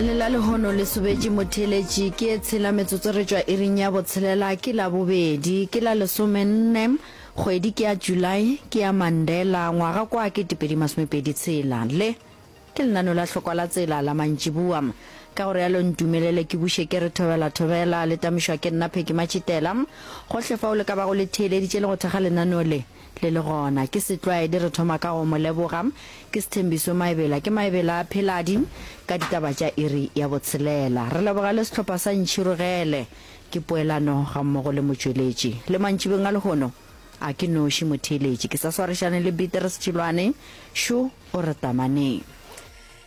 lela lehono le sobetše motheletši ke e tshela metsotso re tšwa iring ya botshelela ke la bobedi ke la lesomenne kgwedi ke ya july ke ya mandela ngwaga kwa ke tepedi masomepedi tshela le ke lenano la hlokwa la tsela la mantšibua ka gore yalo ntumelele ke buše ke re thobela thobela le tamišwa ke nna pheki matšhitela gohle fa o le ka bago le theeleditše le go thekga lenano le Le le gona. Ke Setlwaedi, re thoma ka go Mo leboga. Ke Sethembiso, Maebela ke Maebela a pheladi, ka ditaba tša iri ya botshelela. Re leboga le sehlopha sa Ntšhirogele. Ke poelano gammogo le motšweletši. Le mantšibeng a lehono, a ke noši motheeletši. Ke sa swarišane le Beatrice Tšilwane. Šo o re tamaneng.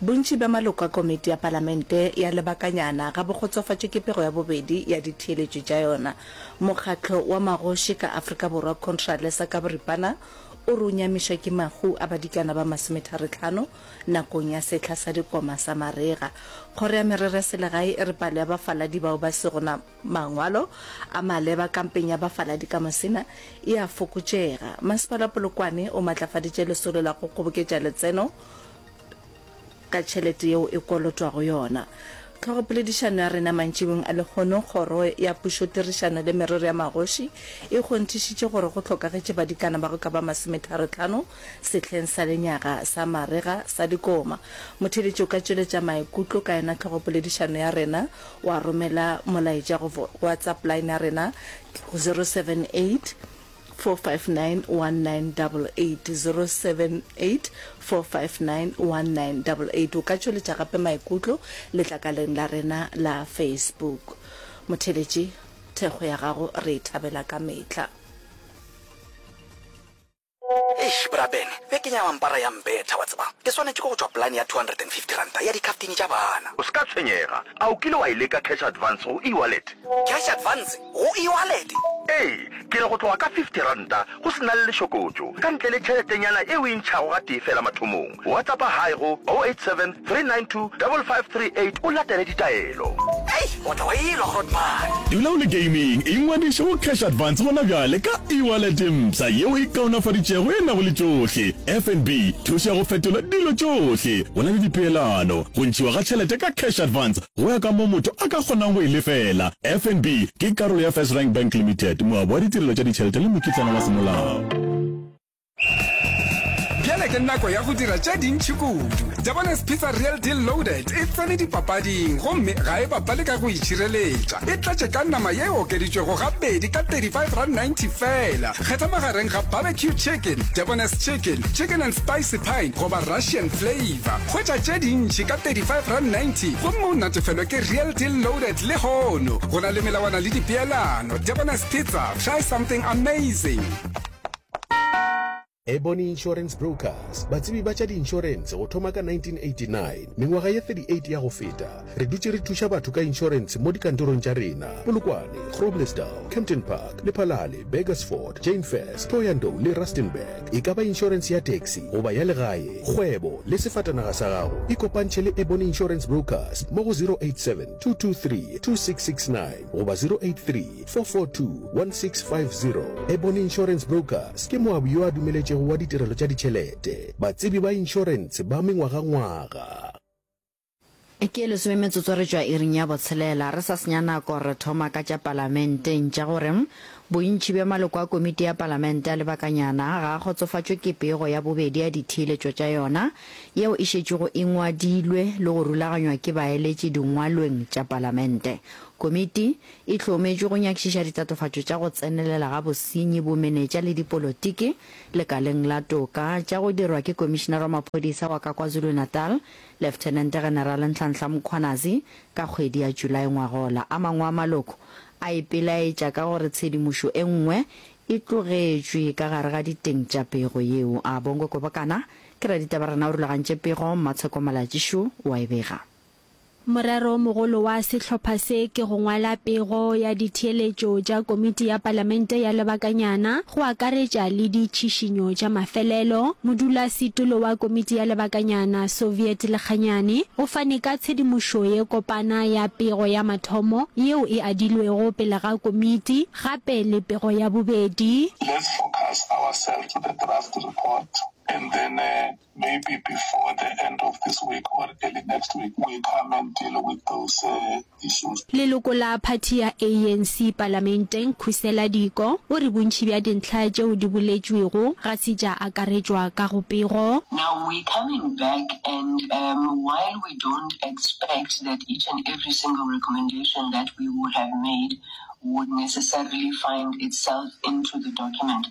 Bontši bja maloko a Komiti ya Palamente ya Lebakanyana ga bo kgotsofatše ke pego ya bobedi ya ditheeletšo tša yona. Mokgatlo wa magoši ka Afrika Borwa Contralesa ka boripana o re o nyamišwa ke mahu a badikana ba masometharetlhano nakong ya sehla sa dikoma sa marega. Kgoro ya Merero ya Selegae e re palo ya bafaladi bao ba sego na Mangwalo a maleba kampeng ya bafaladi ka Musina e a fokotšega. Masepala Polokwane o matlafaditše lesolo la go kgoboketša letseno ka tšhelete yeo e kolotwago yona. Tlhogopoledišano ya rena mantšibong a lehono, Kgoro ya Pušotirišano le Merero ya Magoši e kgonthišitše gore go hlokagetše badikana ba go ka ba masometharo-tlhano sehleng sa lenyaga sa marega sa dikoma. Motheeletši o ka tšweletša maikutlo ka yona tlhogopoledišano ya rena Wa romela molaetša go WhatsApp line ya rena 0784591988 o ka tšweletša gape maikutlo letlakaleng la rena la Facebook. Motheletši, thekgo ya gago re e thabela ka mehla. Eish bra Ben, beke ya mampara ya mbetha, wa tseba. Ke swanetše ke go tšwa polane ya R250 ya dikhaftini tša bana. O se ka tshwenyega. A o kile wa e leka cash advance go e-wallet? Cash advance go e-wallet? Ee, ke re go tloga ka R50, go se na le lešokotšo, ka ntle le tšheletenyana e o e ntšhago gatee feela mathomong. Whatsappa hi go 087 392 5538 o latele ditaelo. Hei, o tla wa ilwa Grootman. Dula o le gaming, ingwadiše go Cash Advance gona bjale ka e-wallet e mpsha yeo e kaonafaditšego e nago le tšohle, FNB, thušo ya go fetola dilo tšohle, go na le dipeelano, go ntšhiwa ga tšhelete ka Cash Advance go ya ka moo motho a ka kgonang go e lefela. FNB ke karolo ya First Rank Bank Limited, moabi wa ditirelo tša ditšhelete le mokitlana wa semolao. bjale ke nako ya go dira tše dintšhi kudu jabones pizza real deal loaded e tsene dipapading gomme ga e bapale ka go itšhireletša e tlatše ka nama ye e okeditšwego gabedi ka 35 rand 90 fela kgetha magareng ga barbecue chicken jabones chicken chicken and spicy pine goba russian flavor hwetša tše dintšhi ka 35 rand 90 gomme o natefelwe ke real deal loaded le hono go na le melawana le dipeelano jabones pizza try something amazing Ebony Insurance Brokers, batsebi ba tša di-insurance go thoma ka 1989. Mengwaga ye 38 ya go feta, re dutše re thuša batho ka insurance mo dikantorong tša rena, Polokwane, Groblersdal, Kempton Park, Lephalale, Burgersfort, Jainfest, Thohoyandou le Rustenburg. E ka ba insurance ya taxi goba ya legae, kgwebo le sefatanaga sa gago, ikopantšhe le Ebony Insurance Brokers mo go 087 223 2669 goba 083 442-1650 Ebony Insurance Brokers ke moabi yo a dumeletšego wa ditirelo tša ditšhelete, batsebi ba inšorentshe ba mengwagangwaga. Ke ye lesome metsotso re tšwa iring ya botshelela. Re sa senya nako re thoma ka tša Palamente. Ntša gore bontši bja maloko a Komiti ya Palamente a lebakanyana ga a kgotsofatšwe ke pego ya bobedi ya ditheeletšo tša yona yeo e šetšego e ngwadilwe le go rulaganywa ke baeletši dingwalweng tša Palamente. Komiti E hlometšwe go nyakišiša ditatofatšo tša go tsenelela ga bosenyi, bomenetša le dipolotiki lekaleng la toka tša go dirwa ke Komišinara wa Maphodisa wa ka KwaZulu-Natal, Leftenente-Generale Nhlanhla Mkhwanazi ka kgwedi ya Julae ngwagola. A mangwe a maloko a ipelaetša ka gore tshedimošo e nngwe e tlogetšwe ka gare ga diteng tša pego yeo. A Bongo Kobokana ke raditaba rena o rulagantše pego, Mmatsheko Malatjishu o a e bega. Morero o mogolo wa sehlopha se ke go ngwala pego ya ditheeletšo tša Komiti ya Palamente ya Lebakanyana, go akaretša le ditšhišinyo tša mafelelo. Modulasetulo wa Komiti ya Lebakanyana, Soviet Lekganyane, o fane ka tshedimošo ye kopana ya pego ya mathomo yeo e adilwego pele ga Komiti, gape le pego ya bobedi. Let's focus ourselves to the draft report and then Maybe before the end of this week or early next week we come and deal with those issues. Leloko la phathi ya ANC palamenteng Khusela Diko o re bontši bja dintlha tšeo di boletšwego ga se tša akaretšwa ka go pego. Now we coming back and um while we don't expect that each and every single recommendation that we would have made would necessarily find itself into the document,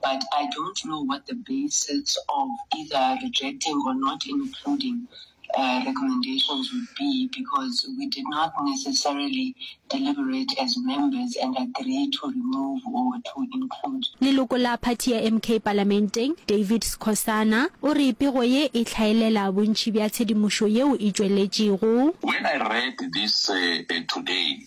but I don't know what the basis of either rejecting or not including recommendations would be because we did not necessarily deliberate as members and agree to remove or to include. Leloko la phathi ya MK palamenteng, David Skhosana, o re pego ye e hlaelela bontši bja tshedimošo yeo e tšweletšego. When I read this today,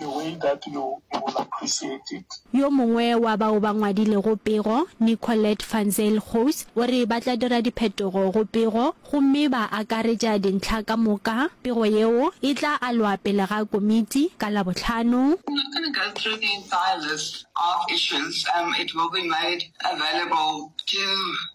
The way that you will appreciate it. Yo mongwe wa bao ba ngwadilego pego, Nicolette van Zyl Goes, o re ba tla dira diphetogo go pego gomme ba akaretša dintlha ka moka. Pego yeo e tla alwa pele ga komiti ka Labohlano. I'm not going to go through the entire list of issues. It will be made available to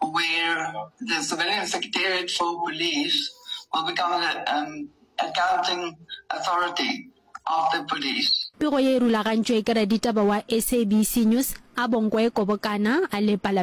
where the Civilian Secretariat for Police will become the um, accounting authority of the police. Pego ye e rulagantšwe ke raditaba wa SABC News, Abongwe Kobokana, a le Palamente.